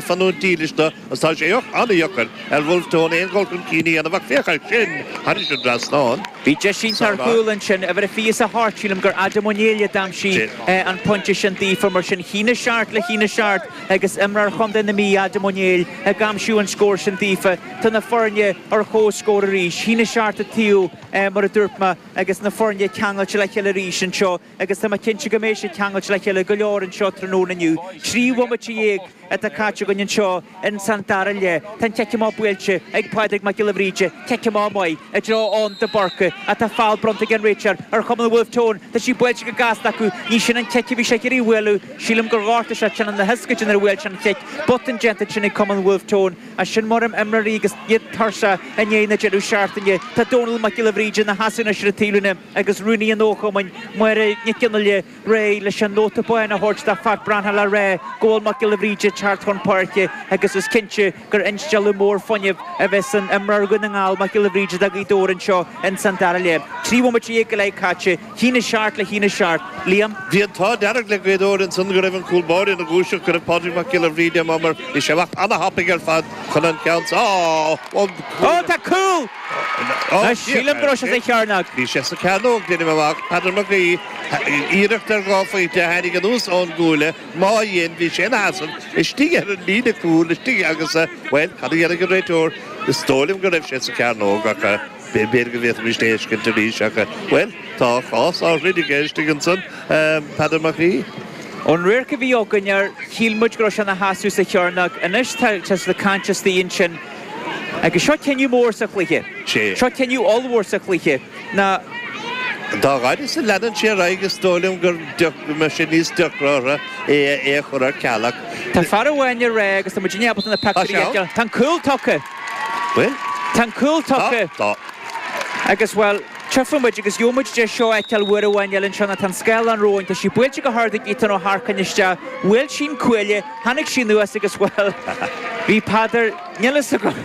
fanúint dílis do, agus tá sé an-dheacair ar Wolfe Tone aon dhul chun cinn a dhéanamh, ach féach air sin, thar an dtrasnán. Bhí deis iontach ar chúl ansin, uimhir a fios a hairt, sílim gur Adam Ó Néill a d'aimsigh an pointe sin daofa, mar sin haon a seacht le haon a seacht agus imreoir chontae na Mí, Adam Ó Néill, ag aimsiú an scóir sin daofa. Tá na foirne ar comhscór arís, haon a seacht an taobh, mar a dúirt mé, agus na foirne ceangailte le chéile arís anseo. agus tá mé cinnte go mbeidh siad ceangailte le chéile go leor anseo tráthnóna inniu. Trí bhomaite dhéag atá caite againn anseo ins an dara leath. Tá an chic amach buailte ag Pádraig Mac Giolla Bhríde, cic amach maith, i dtreo Eoin de Búrca, ach tá feall bronnta ag an réiteoir ar chumann an Wolfe Tone. Tá sí buailte go gasta acu. Ní sin an chic a bhí sé ag iarraidh a bhualadh. Sílim gur ghortaigh sé teannán na hioscaide nuair a bhuail sé an chic. Botún déanta ansin ag cumann an Wolfe Tone, ach sin mar a bhíonn imreoirí agus iad tuirseach i ndiaidh na deireadh seachtaine. Tá Dónall Mac Giolla Bhríde ina sheasamh anois ar an taobhlíne. agus Rúnaí an Fhochumainn, Máire Nic Fhionnghaile, réidh leis an nóta bán a thabhairt do Phat Branhall le rá go bhfuil Mac Giolla Bhríde teacht chun páirce agus is cinnte gur instealladh mór fuinnimh a bheidh san imreoir Dhún na nGall, Mac Giolla Bhríde do Ghaoth Dobhair anseo ins an dara leath. Trí bhomaite dhéag go leith caite. Haon a seacht le haon a seacht. Liam. Bhí an t-ádh dearg le Gaoth Dobhair ansan go raibh an cúl báire ina dhúiseacht, go raibh Pádraig Mac Giolla Bhríde i mbun mar bhí sé ag imeacht ana-thapaidh ar fad chun an ceann sa. Ó, tá cúl! Anois, sílim go raibh sé sa chearnóg. Bhí sé sa cearnóg, deinim amach. Peadar Mac Aoidh, iarracht ar dhá phointe a tháinig anuas ón gcuaille, má dhein, bhí sé ina sheasamh istigh ar an líne cúil istigh agus, bhuel, cad a dhéanfaidh an réiteoir? Is dóigh liom go raibh sé sa chearnóg ach b'fhéidir go bhféadfaimis é a fheiscint arís ach, bhuel, tá a chás á throid aige istigh ansan, Peadar Mac Aoidh. Ón radharc a bhí againn air, shíl muid go raibh sé ina sheasamh sa chearnóg. Anois, tá sé ag caint istigh ansin. Agus seo cinneadh mór sa chluiche. Sé. Seo cinneadh ollmhór sa chluiche ná. Dá fhaide is a leanann sé ar aghaidh, is dóigh liom go mbeidh sé níos deacra orthu é a chur ar ceal ach. Tá fear amháin ag rá, agus tá muid inábalta na pictiúirí a fheiceáil, tá an cúl tugtha! Bhuel? Tá an cúl tugtha! Tá, tá. Agus, bhuel, tiocfaidh muid agus gheobhaidh muid deis seo a fheiceáil uair amháin eile anseo ná tá an scáileán romhainn, tá sí buailte go hard ag Ethan Ó hEarcáin isteach, bhuail sí an cuaille, Tháinig sí anuas agus, bhuel, bhí Peadar, níl a fhios agam,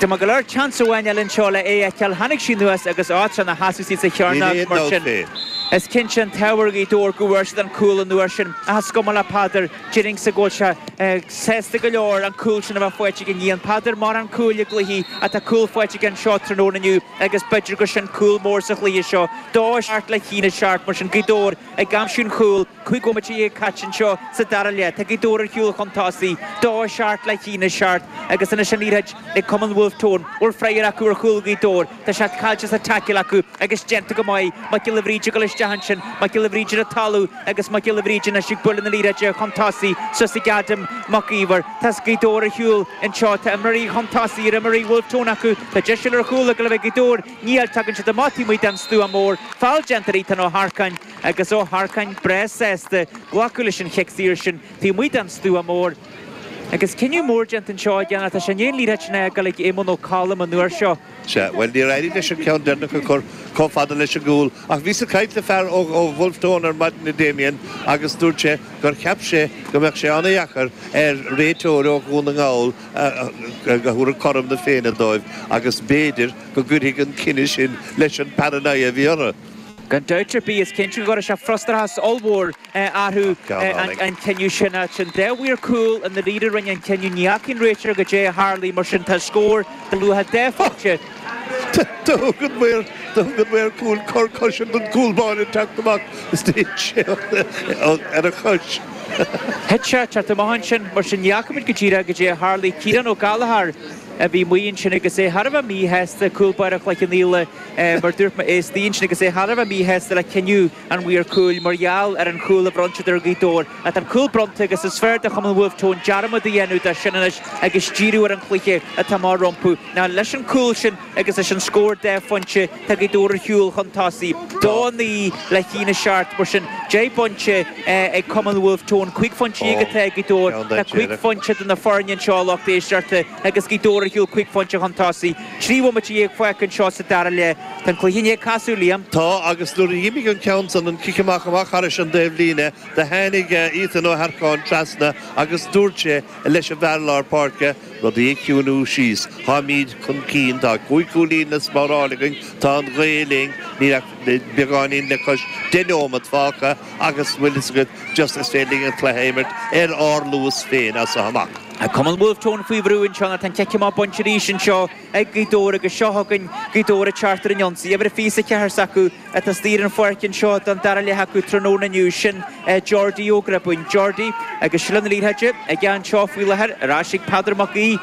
maith go leor, tseans amháin eile anseo le é a fheiceáil, tháinig sí anuas agus á, tá sé ina sheasamh istigh sa chearnóg, mar sin, is cinnte an t-ádh ar Ghaoth Dobhair go bhfuair siad an cúl an uair sin. Ach is cuma le Peadar, déarfainnse go bhfuil sé sásta go leor an cúl sin a bheith faighte aige. Ní fhaigheann Peadar mórán cúil i gcluichí ach tá cúl faighte aige anseo tráthnóna inniu agus b'fhéidir gur sin cúl mór sa chluiche seo. Dó a seacht le haon a seacht, mar sin, Gaoth Dobhair ag aimsiú an chúil. Cúig bhomaite dhéag caite anseo sa dara leath. Tá Gaoth Dobhair ar shiúl chun tosaigh. Dó a seacht le haon a seacht agus anois an liathróid ag cumann Wolfe Tone. Bhfuil freagar acu ar chúl Ghaoth Dobhair? Tá sé caillte sa taicil acu agus déanta go maith. Mac Giolla Bhríde ag dul isteach ansin. Mac Giolla Bhríde le talamh agus Mac Giolla Bhríde anois ag bualadh na liathróide chun tosaigh suas ag Adam Mac Íomhair. Tá Gaoth Dobhair ar shiúl anseo. Tá imreoirí chun tosaigh ar imreoirí Wolfe Tone acu. Tá deis eile ar chúl ag dul a bheith ag Gaoth Dobhair. Níl. Tagann siad amach taobh amuigh den stua mór. Foul déanta ar Ethan Ó hEarcáin. agus Ó hEarcáin breá sásta glacadh leis an chic saoir sin taobh amuigh den stua mór. Agus cinneadh mór déanta anseo aige ná tá sé i ndiaidh an liathróid sin a fhágáil ag Éamonn Ó Colm an uair seo. Sea, bhuel, níor éirigh leis an ceann deireanach a chur chomh fada leis an gcúl, ach bhíos ag caint le fear ó Wolfe Tone ar maidin, a Damien, agus dúirt sé gur cheap sé go mbeadh sé ana-dheacair ar réiteoir ó Dhún na nGall a thabharfadh cothrom na Féinne dóibh agus b'fhéidir go gcuirfidh an cinneadh sin leis an bparanoia a bhí orthu. Gan dabht ar bith, is cinnte go gcuirfidh sé frustrachas ollmhór orthu an cinneadh sin. An dá mhaor cúil i ndáiríre a rinne an cinneadh, ní fhaca an réiteoir goidé a tharlaigh, mar sin, tá scór go luath a dó faighte. Do thug an maor cúil cor coise don gcúl báire teacht amach is do thit sé ar a chois. Thit sé thart amach ansin, mar sin ní fhacaimid go díreach goidé a tharlaigh. Ciarán Ó Gallchóir a bhí amuigh ansin agus é thar a bheith míshásta, cúl báire Chloich Cheann Fhaola, mar dúirt mé, é istigh ansin, agus é thar a bheith míshásta le cinneadh an mhaoir cúil, mar gheall ar an chúl a bhronn siad ar Ghaoth Dobhair. Ach tá an cúl bronnta agus is fearr do Chumann Wolfe Tone dearmad a dhéanamh de sin anois agus díriú ar an chluiche atá amach rompu. Ná leis an gcúl sin agus leis an scór dhá phointe tá Gaoth Dobhair ar shiúl chun tosaigh, dó a naoi le haon a seacht, mar sin deich bpointe ag Cumann Wolfe Tone, cúig phointe dhéag atá ag Gaoth Dobhair, tá cúig phointe idir na foirne anseo a lucht éisteachta agus Gaoth Dobhair ar shiúl cúig phointe chun tosaigh. Trí bhomaite dhéag fágtha anseo sa dara leath. Tá an cluiche i ndiaidh casadh, Liam. Tá, agus nuair a dh'imigh an ceann san, an cic amach, amach thairis an taobhlíne, do tháinig Ethan Ó hEarcáin trasna agus dúirt sé leis an bhfear lár páirce, rudaí a chiúiniú síos. Táimíd chun cinn. Tá cúig chúilín le spáráil againn. Tá an ghaoth linn. Níl ach beagáinín le cois deich neomat fágtha agus bhfuil fhios agat, just is féidir linn an cluiche a imirt ar ár luas féin as seo amach. Cumann Wolfe Tone faoi bhrú anseo ná tá an cic amach bainte arís anseo ag Gaoth Dobhair agus seo chugainn Gaoth Dobhair ag teacht ar an ionsaí. Uimhir a fiche is a ceathair s'acu atá istigh ar an pháirc anseo don dara leath acu tráthnóna inniu, sin é Jordi Ó Gribín. Jordi agus seilbh na liathróide aige anseo faoi láthair. Ar ais ag Peadar Mac Aoidh.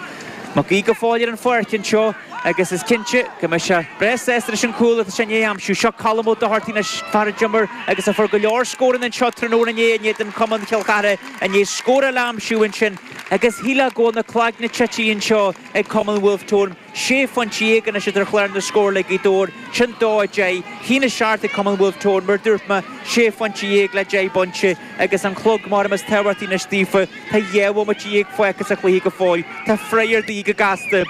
Mac Aoidh go fóill ar an pháirc anseo agus is cinnte go mbeidh sé breá sásta leis an cúl atá sé i ndiaidh aimsiú. Seo Colm Ó Dochartaigh, an fear a d'imir agus a fuair go leor scóranna anseo tráthnóna inné in éadan Cumann Chill Chartha. I ndiaidh scór eile a aimsiú ansin agus shíleá go bhfuil na cloigne tite anseo ag Cumann Wolfe Tone. Sé phointe dhéag anois ar chlár na scór le Gaoth Dobhair, sin dó a deich. A haon a seacht ag Cumann Wolfe Tone, mar dúirt mé, sé phointe dhéag le deich bpointe, agus an clog mairim is tábhachtaí anois daofa. Tá dhá bhomaite dhéag fágtha sa chluiche go fóill. Tá freagra de dhíth go gasta.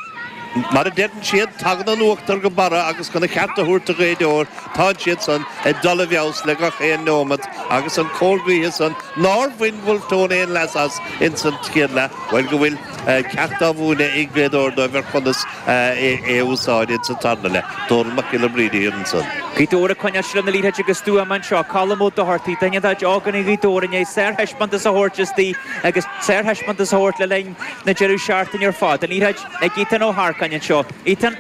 Mar a deireann siad, tagann an uachtar go barra agus chun a cheart a thabhairt do Ghaoth Dobhair, tánn siad san ag dul i bhfeabhas le gach aon neomat agus an cóir gaoithe san Nár bhain Wolfe Tone aon leas as ins an chéad leath. Bhuel, go bhfuil ceacht á mhúineadh ag Gaoth Dobhair dóibh ar chonas é a úsáid ins an tarna leath. Dónall Mac Giolla Bhríde thiar ansan. Gaoth Dobhair ag coinneáil seilbh na liathróide go stuama anseo. Colm Ó Dochartaigh. Duine de ógánaigh Ghaoth Dobhair i ndiaidh sárthaispeántas a thabhairt istigh agus sárthaispeántas a thabhairt le linn na deireadh seachtaine ar fad. An liathróid ag Ethan Ó hEarcáin anseo. Ethan.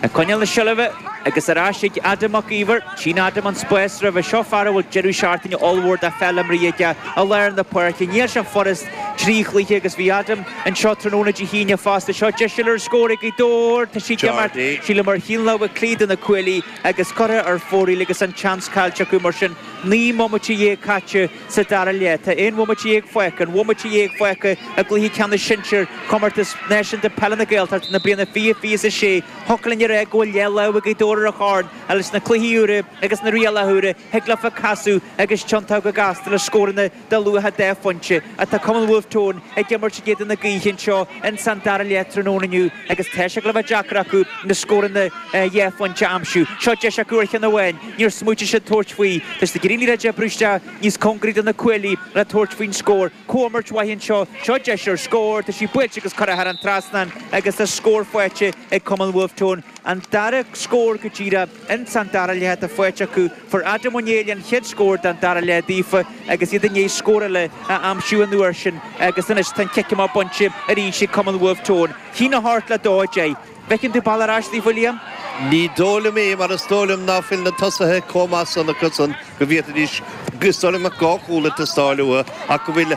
Ag coinneáil na seilbhe agus ar ais ag Adam Mac Íomhair, tchíonn Adam an spás roimhe anseo, fear a bhfuil deireadh seachtaine ollmhór de pheil imeartha aige i lár na páirce. Níl sé furast trí chluiche agus bhí Adam anseo tráthnóna Dé hAoine fosta. Seo deis eile ar scór ag Gaoth Dobhair, tá sí ag imeacht ar shiúl amach ar thaobh na láimhe clé de na cuaillí agus curtha ar fóraoil agus an tseans caillte acu mar sin. Naoi mbomaite dhéag caite. sa dara leath. Tá aon bhomaite dhéag fágtha, aon bhomaite dhéag fágtha i gcluiche ceannais sinsear Chomórtas Náisiúnta Peile na Gaeltachta na bliana 2026. Thiocfadh linn a rá go bhfuil leathlámh ag Gaoth Dobhair ar an chorn ach sna cluichí úra agus na rialacha úra thig leofa casadh agus tiontú go gasta le scóranna de luach dhá phointe. Tá cumann Wolfe Tone ag imirt in éadan na gaoithe anseo insan dara leath tráthnóna inniu agus tá sé ag gabháil a bheith deacair acu na scóranna dhá phointe a aimsiú. Seo deis acu ar cheann amháin. Níor smaoitigh siad tabhairt faoi tá siad ag iarraidh an liathróid a oibriú isteach níos cóngaraí do na cuaillí le tabhairt faoin scór. Comhimirt mhaith anseo. Seo deis ar scór. Tá sí buailte agus curtha thar an trasnán agus tá scór faighte ag Cumann Wolfe Tone. An dara scór go díreach ins an dara leath atá faighte acu. Fuair Adam Ó Néill an chéad scór don dara leath daofa agus iad i ndiaidh scór eile a aimsiú an uair sin agus anois tá an cic amach bainte arís ag Cumann Wolfe Tone. A haon a hocht le 2 10. Feiceann tú bealach ar ais, a Liam? Ní dóigh liom é, mar is dóigh liom ná fuil na tosaithe chomh maith san acu san go bhféadfaidís, is dóigh liom, dhá chúl ag teastáil uathu ach go bhfuil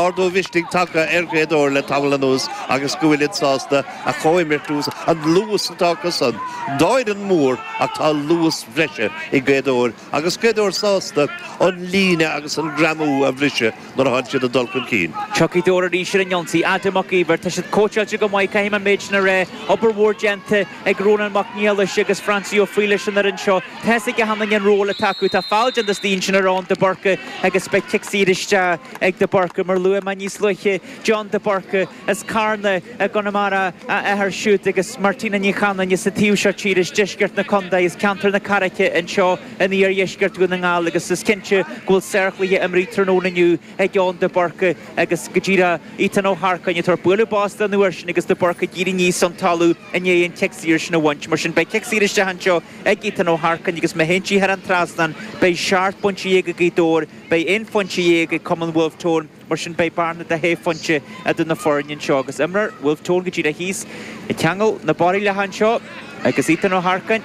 ardú mhisnigh tagtha ar Ghaoth Dobhair le tamall anuas agus go bhfuilid sásta a chomhimirt agus an luas atá acu san dá fhoireann mhór ach tá luas bhreise ag Gaoth Dobhair agus Gaoth Dobhair sásta an líne agus an greamú a bhriseadh. nuair atánn siad ag dul chun cinn. Tá Gaoth Dobhair arís ar an ionsaí, Adam Mac Íomhair. Tá siad cóitseáilte go maith, caithfidh mé an méid sin a rá. Obair mhór déanta ag Rónán Mac Niallais agus Francie Ó Frighil leis an fhoireann seo. Tá a fhios ag achan duine an ról atá acu. Tá feall déanta istigh ansin ar Eoin De Búrca agus beidh cic saor isteach ag De Búrca. Mar a luaigh mé níos luaithe, Eoin De Búrca. As Carna i gConamara a athair siúd agus Martina Ní Chanainn as an taobh seo tíre as deisceart na condae, as ceantar na Carraice anseo in iardheisceart Dhún na nGall agus is cinnte go bhfuil sárchluiche imrithe tráthnóna inniu ag Eoin de Búrca agus go díreach Ethan Ó hEarcáin ag tabhairt bualadh bos dó an uair sin agus de Búrca ag éirí aníos ón talamh i ndiaidh an cic saor sin a bhaint. Mar sin beidh cic saor isteach anseo ag Ethan Ó hEarcáin agus má théann sí thar an trasnán beidh seacht bpointe dhéag ag Gaoth Dobhair, beidh aon phointe dhéag ag cumann Bhulf Tón. Mar sin, beidh bearna de shé phointe idir na foirne anseo agus imreoir Bhulf Tón go díreach thíos ag ceangal na barriallacha anseo agus Ethan Ó hEarcáin.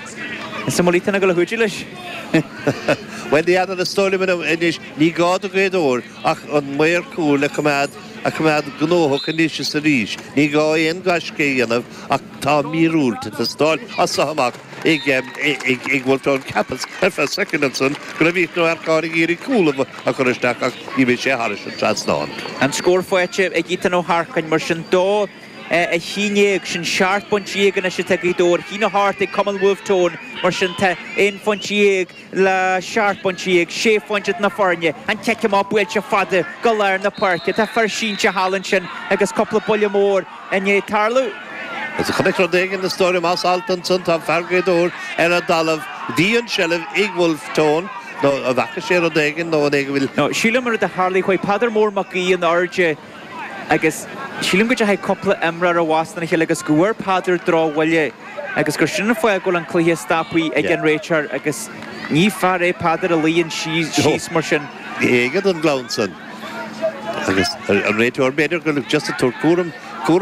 Is an bhfuil Ethan ag dul a chuidiú leis. Bhuel, ní fheadar, is dóigh liom anois, ní gá do Ghaoth Dobhair ach an maor cúil a choimeád a choimeád gnóthach anois is arís. Ní gá aon gaisce a dhéanamh ach. Tá míorúilt ag teastáil as seo amach ag Wolfe Tone. Cheapas, ar feadh soicind ansan, go raibh Ethan Ó hEarcáin ag iarraidh cúl a chur isteach ach d'imigh sé thairis an trasnán. An scór faighte ag Ethan Ó hEarcáin, mar sin, dó a chín dhéag. Sin seacht bpointe dhéag anois atá ag Gaoth Dobhair. Chinn Ó hAirt ag Cumann Wolfe Tone, mar sin, tá aon phointe dhéag. le seacht bpointe dhéag sé phointe idir na foirne, an cic amach buailte fada go lár na páirce. Tá fear sínte thall ansin agus cúpla buille mór i ndiaidh tarlú. As a chonaic rud éigin, is dóigh liom, as alt ansan, tá fear Ghaoth Dobhair ar an dtalamh. Bhí an tseilbh ag Wolfe Tone, nó an bhfaca sé rud éigin, nó an é go bhfuil. Nó sílim rud a tharlaigh, chuaigh Peadar Mór Mac Aoidh in airde. agus sílim go dteachaigh cúpla imreoir i bhfostú lena chéile agus go bhfuair Peadar drochbhuille agus gur sin an fáth a bhfuil an cluiche stoptha ag an réiteoir agus ní fear é Peadar a luíonn síos mar sin. Ní fhéadann an gleann san agus an réiteoir, b'fhéidir gur just ag tabhairt cúram.